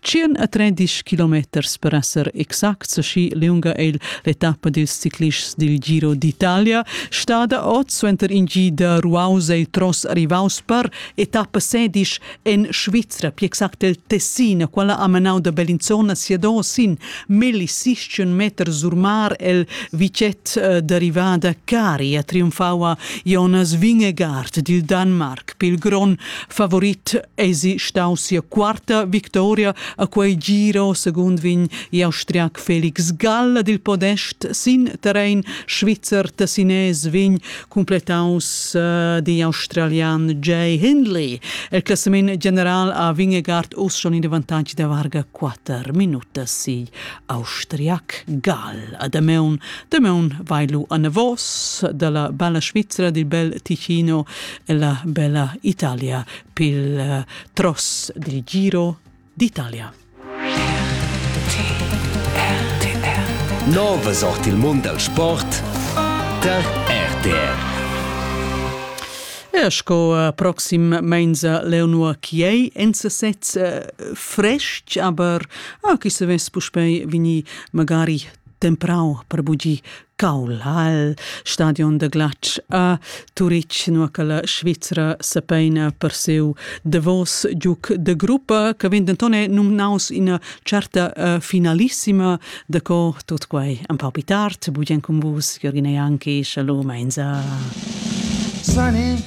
Tschien a tredisch kilometers per esser exacts, schi liunga è l'etappa dils ciclists dil Giro d'Italia stada oz suenter in gi da ruaus e tros arrivaus per etappa sedisch en Svizra, più exact el Tessin, quella ha menau da Bellinzona siadò sin millisischen meter sur mar el vicet eh, derivada Cari a trionfau a Jonas Vingegaard dil Danmark, pil gron favorit eisi stau sia quarta victoria a quei giro secund vin gli austriac Felix Gall dil podest sin terrein svizzer tessinés vin completaus uh, di australian Jay Hindley el classament general a Vingegaard us schon in avantage da varga 4 minuta si austriac Gall a Dameun Dameun vailu a Navos dalla bella Svizzera dil bel Ticino e la bella Italia pil uh, tross dil Giro d'Italia. Nova sort il mund dal sport tar RTR. E sco uh, proxim meinza Leonor Chiei en sesez uh, fresc, aber ah, chi se ves puspei vini magari temprau per bugi Caulhall, stadion da glatsch a Turitg, nua che la Svizra sepeina per siu davos giuc de gruppa, che vegn denton numnaus ina certa uh, finalissima, da co tut quei un pau più tard, bugen con vus, Jürgen Janki, shalom, einsa. Sunny.